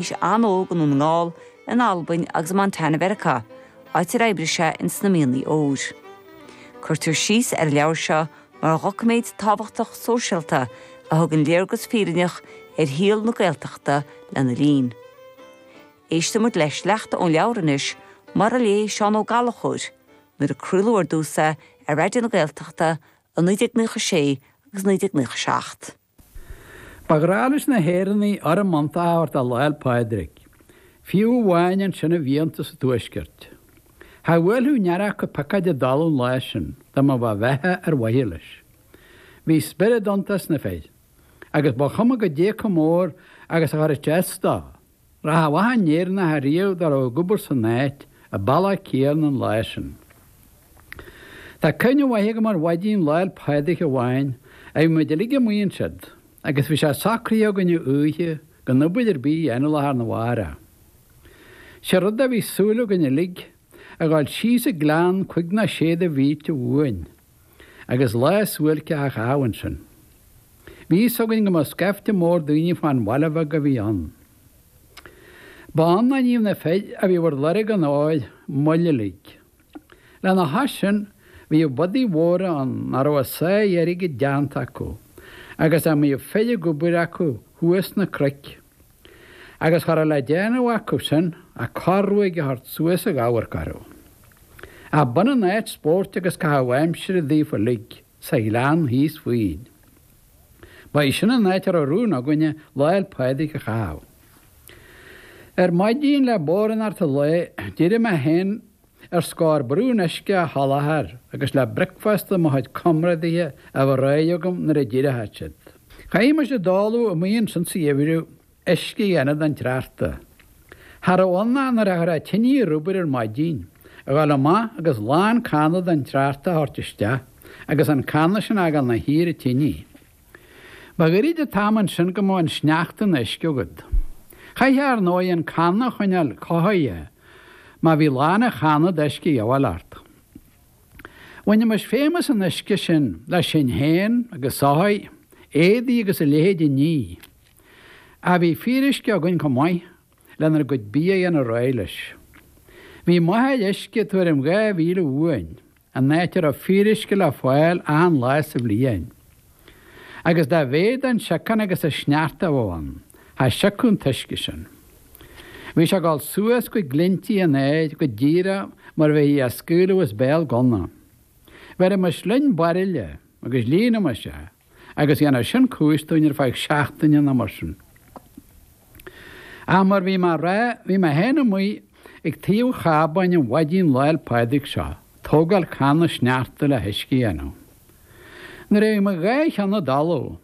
Bhí sé an-óg i nDún na nGall, in Albain agus i Montana Mheiriceá, áit ar oibrigh sé in sna mianaigh óir. Cuirtear síos ar an leabhar seo mar dhoiciméad tábhachtach sóisialta a thugann léargas fírinneach ar shaol na Gaeltachta lena linn. Éistfidh muid le sleachta ón leabhar anois, mar a léigh Seán Ó Gallchóir, nuair a craoladh ar dtús é ar Raidió na Gaeltachta i 1996 agus 1997. Ba ghnách leis na hÉireannaigh urraim iontach a thabhairt do Lá'l Pádraig, fiú amháin ansin i bhfiántas an Tuaiscirt. Cha bhuailfeadh aon fhear acu piocóid i dtalamh an lá sin dá mbeadh a bheatha ar mhaithe leis. Bhí spiorad iontach sna fir agus ba chuma goidé chomh mór agus a chuirfeadh sé as dó. Rachadh achan Éireannach ariamh dá raibh ag obair san áit a bhealach féin an lá sin. Tá cuimhne mhaith agam ar mhaidin Lá'l Pádraig amháin a bhí muid uilig amuigh ansiud agus bhí sé socraithe againne oíche gan obair ar bith a dhéanamh lá arna mhárach. Sé rud a bhí súil againn uilig, a dhul síos an gleann cúig nó sé de mhílte uainn. agus lá suáilceach a chaitheamh ansin. Bhí fhios againn go mbeadh scaifte mór daoine fán bhaile bheag a bhí ann. Ba ann a níodh na fir a bhí ar lorg an óir moill uilig. Lena chois sin, bhíodh bodaigh mhóra ann a raibh a sáith airgid déanta acu agus a mbíodh fir ag obair acu thuas sna cnoic. agus cha raibh le déanamh acusan ach corr-ruaig a thabhairt suas ag amharc orthu. Ach b'ionann áit spóirt agus caitheamh aimsire daofa uilig sa ghleann thíos fúinn. Ba í sin an áit a raibh rún againne Lá'l Pádraig a chaitheamh. Ar maidin le bodhránacht an lae d'éirigh mé féin, Ar scor braon uisce a sholáthar agus le bricfeasta mo chuid comrádaithe a bheith réidh agam nuair a d'éireodh siad. Chaithimis i dtólamh amuigh ansin sa gheimhreadh, uisce a dhéanamh den tsneachta. Cha raibh ann ach nuair a chuirfeá an tinidh ar obair ar maidin, a dhul amach agus lán canna den tsneachta a thabhairt isteach agus an canna sin a fhágáil ina shuí ar an tinidh. Ba ghairid an t-am ansin go mbeadh an sneachta ina uisce agat. Chaithfeá ar ndóigh an canna a choinneáil cothaithe má bhí lán an channa d'uisce a dhíobháil ort. Bhainimis feidhm as an uisce sin le sinn féin agus soithigh, éadaí agus a leithéid a ní. Ach bhí fíoruisce againn chomh maith lenár gcuid bia a dhéanamh réidh leis. Bhí maidhm uisce tuairim dhá mhíle uainn An áit a raibh fíoruisce le fáil achan lá sa bhliain. Agus dá mhéad an siocán agus an sneachta a bheadh ann, cha siocfadh an t-uisce sin. Bhí sé ag dul suas go glinntí an aeir, go díreach mar a bheifí á scaoileadh as béal gunna. Bheirimis linn bairille agus líonaimis é. agus dhéanfadh sin cúis dúinn ar feadh seachtaine nó mar sin. Ach mar bhí mé a rá, bhí mé féin amuigh ag taobh an chábáin an mhaidin Lá'l Pádraig seo, tógáil canna sneachta le huisce a dhéanamh. Nuair a bhí mo dhá cheann i dtalamh,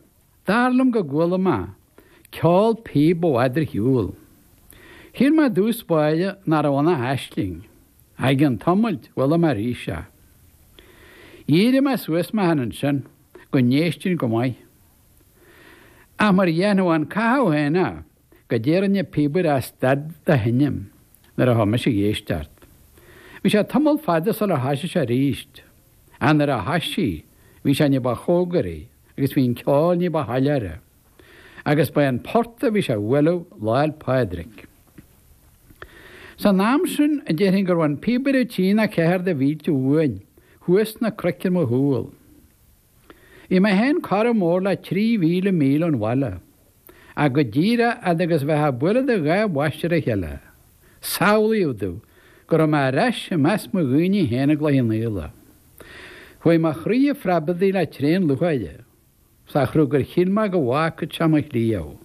dar liom go gcuala mé ceol píob i bhfad ar shiúl. Shíl mé i dtús báire nach raibh ann ach aisling. Ach i gcionn tamaill, chuala mé arís é. Dhírigh mé suas mé féin ansin. go n-éistfinn go maith. Ach mar a dhéanfadh an cathú féin é, goidé a rinne an píobaire ach stad de sheinm nuair a chuaigh mise a dh'éisteacht. Bhí sé tamall fada sular thoisigh sé arís, ach nuair a thoisigh, bhí sé ní ba chomhgaraí agus bhí an ceol ní ba shoiléire. agus ba é an port a bhí sé a bhualadh Lá'l Pádraig. San am sin, déarfainn go raibh an píobaire a trí nó a ceathair de mhílte uainn, thuas sna cnoic ar mo chúl. Bhí mé féin corradh mór le trí mhíle míle ón bhaile, ach go díreach fhad agus a bheifeá ag bualadh do dhá bhois ar a chéile, samhlaíodh domh go raibh mé ar ais i measc mo dhaoine féin i gCloich Cheann Fhaola. Chuaigh mo chroí a phreabadaigh le tréan lúcháire. sa chruth gur shíl mé go bhfágfadh sé mo chliabh.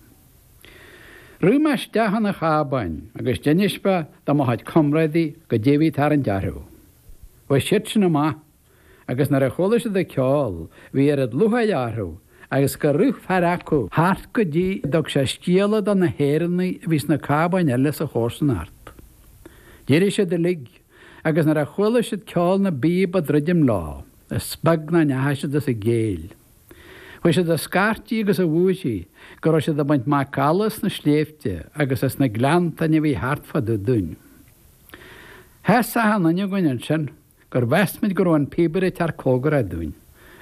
Rith mé isteach chun an chábáin agus d'inis mé do mo chuid comrádaí goidé a bhí ag tarraingt orthu. Chuaigh siadsan amach agus nuair a chuala siad an ceol bhí oiread lúcháire orthu agus gur rith fear acu thart go dtí go dtug sé scéala do na hÉireannaigh a bhí sna cábáin eile sa chomharsanacht. D'éirigh siad uilig agus nuair a chuala siad ceol na bpíob ag druidim leo, Is beag nach ndeachaigh siad as a gcéill. Chuaigh siad a scairtigh agus a bhúirthigh go raibh siad ag baint macalla as na sléibhte agus as na gleanntáin a bhí thart fá dtaobh dúinn. Sheas achan duine againn ansin gur mheas muid go raibh an píobaire ag teacht comhgarach dúinn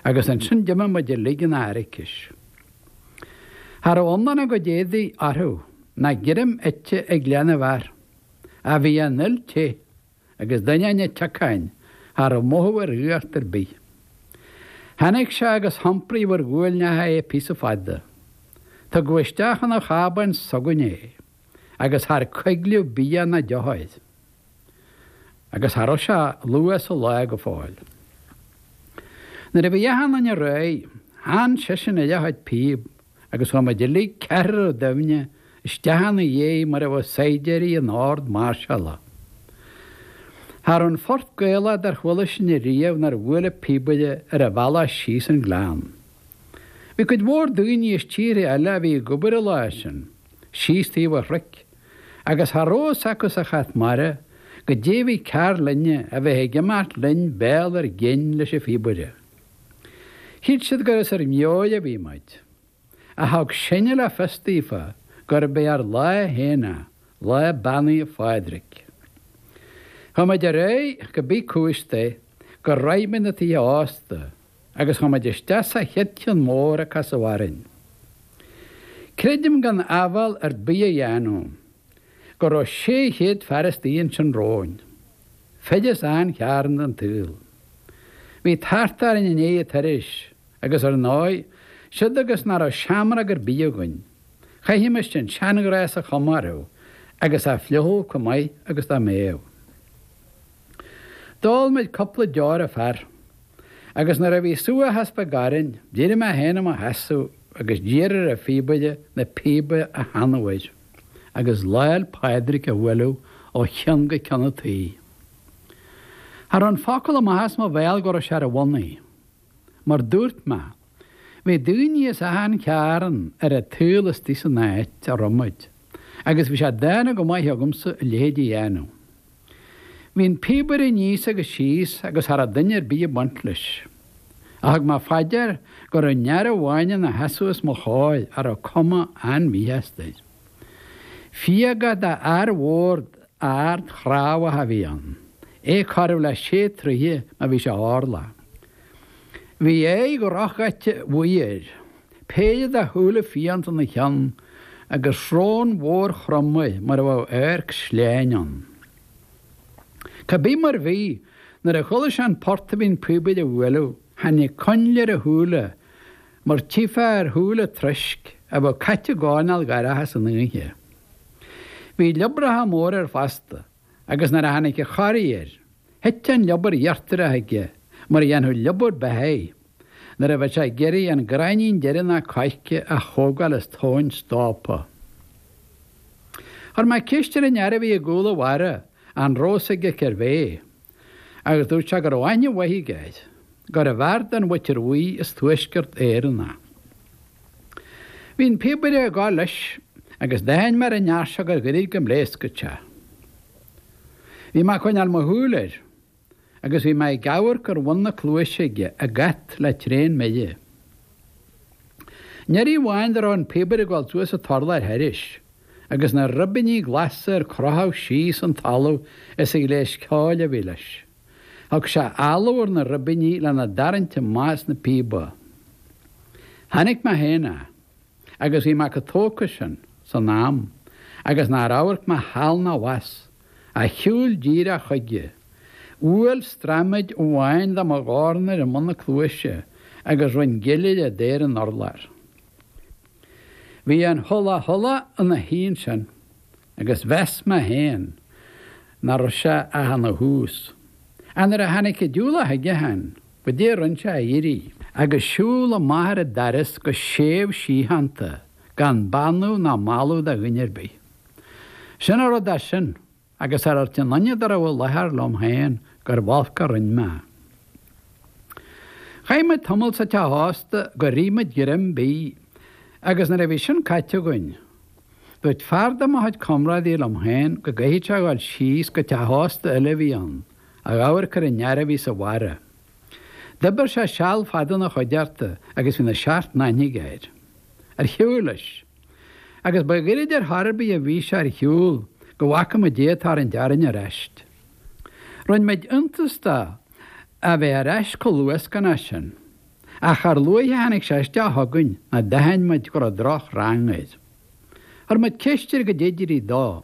agus ansin d'imigh muid uilig ina airicis. Cha raibh iomlán a gcuid éadaí orthu ná greim ite ag leath na bhfear ach bhí an fhuil te. agus d'ainneoin an tsiocáin cha raibh mothú ar fhuacht ar bith. Tháinig sé agus hiompraíodh ar ghuailneacha é píosa fada. Tugadh isteach chun an chábáin s'againne é agus char coigleadh bia ná deoch air. Agus cha raibh sé luath sa lá go fóill. Nuair a bhí achan duine réidh, theann seisean air a chuid píob. agus chuaigh muid uilig ceathrar ar doimhne isteach ina dhiaidh mar a bheadh saighdiúirí in ord máirseála. Cha raibh aon phort Gaelach dár chuala sinne riamh nár bhuail an píobaire ar a bhealach síos an gleann. Bhí cuid mhór daoine as tíortha eile a bhí ag obair an lá sin, síos taobh an chnoic, agus cha raibh a fhios acu sa chat mara goidé a bhí cearr linne a bheith ag imeacht linn béal ár gcinn leis an phíobaire. Shíl siad gur as ár meabhair a bhí muid. Ach thug sinne le fios daofa gurb é ár lá féin é, lá beannaithe Phádraig. Chuaigh muid ar aghaidh cá bith cúis é gur shroich muid na tithe ósta agus chuaigh muid isteach sa chéad chionn mór a casadh orainn. Creidim gan áibhéil ar bith a dhéanamh go raibh sé chéad fear istigh ansin romhainn. Fir as achan chearn den tsaol. Bhí tart orainn i ndiaidh an turais agus ar ndóigh, siúd agus nach raibh seamróg ar bith againn, chaithfimis an seanghnás a chomóradh agus a fliuchadh comh maith agus dá mbeadh. D'ól muid cupla deor an fear agus nuair a bhí subhachas beag orainn, d'éirigh mé féin i mo sheasamh agus d'iarr ar an phíobaire na píoba a theannadh air. agus Lá'l Pádraig a bhualadh ó cheann go ceann an tí. Cha raibh an focal amach as mo bhéal go raibh sé ar a bhonnaí. Mar dúirt mé, bhí daoine as achan chearn ar a' tsaol istigh san áit a raibh muid agus bhí sé dána go maith agamsa a leithéid a dhéanamh. Bhí an píobaire aníos agus síos agus cha rabh duine ar bith ag baint leis. Ach thug mé fá dear go rabh aon fhear amháin ina sheasamh os mo chomhair a rabh cuma an-mhíshásta air. Fiaga de fhear mhór ard chnámhach a bhí ann, é corradh le sé troighe má bhí sé orlach. Bhí aghaidh dhrochdhaite bhuí air. Péire de shúile fiánta ina cheann agus srón mhór chromtha mar a bheadh adharc sleáin ann. Cá bith mar bhí, nuair a chuala sé an port a bhí an píobaire a bhualadh, tháinig coinnle ar a shúile mar tchífeá ar shúile troisc a bheadh caite i gcoirnéal dorcha san oíche. Bhí liobracha móra air fosta agus nuair a tháinig an corraí air, thit an liobar íochtarach aige mar a dhéanfadh liobar beithigh. Nuair a bheadh sé ag iarraidh an gráinnín deireanach coirce a thógáil as tóin stópa. Chuir mé ceist ar an fhear a bhí i gcúl an bharra, an raibh a fhios aige cérbh é, agus dúirt sé go raibh aithne mhaith aige air, gurbh fhear den mhuintir bhuí as Tuaisceart Éireann é. Bhí an píobaire ag gabháil leis agus d'aithin mé ar an fhear seo gur ghairid go bpléascfadh sé. Bhí mé ag coinneáil mo shúil air. agus bhí mé ag amharc ar bhun na cluaise aige, ag at, le tréan mire. Aon iarraidh amháin dá raibh an píobaire ag dul suas an t-urlár thairis, agus na ribíní glasa ar crochadh síos chun talaimh as an ghléas ceoil a bhí leis. Thug sé áladh ar na ribíní lena dtarraingt amach as na píoba. Tháinig mé féin a. agus bhí mé chomh tógtha sin san am agus nár amharc mé thall ná abhus ach shiúil díreach chuige, bhuail straiméad amháin de mo dhorn air i mbun na cluaise agus rinn gile de ar an urlár. Bhí an 'hula hula' ina shuí ansin. agus mheas mé féin nach raibh sé ach ina thús. Ach nuair a tháinig an diúlach chuige, chan dadaí a rinn sé ach éirí agus siúl amach ar an daras go séimh síochánta gan beannú ná mallú do dhuine ar bith. Sin a raibh de sin agus char dhúirt aon duine dá raibh i láthair liom féin gurbh olc a rinn mé. Chaith muid tamall sa teach ósta gur ith muid greim bídh agus nuair a bhí sin caite againn, Dúirt fear de mo chuid comrádaí liom féin go gcaithfeadh sé a dhul síos go teach ósta eile a bhí ann, a dh'amharc ar an fhear a bhí sa bharra. D'oibir sé seal fada ina chuideachta agus bhí na seacht n-aithne aige air. Ar shiúil leis. Agus ba ghairid ar chor ar bith a bhí sé ar shiúl go bhfaca muid é ag tarraingt orainn ar ais. Rinne muid iontas de é a bheith ar ais chomh luascánta sin. Ach char luaithe a tháinig sé isteach chugainn ná d'aithin muid go raibh droch rang air. Chuir muid ceist air goidé a d'éirigh dó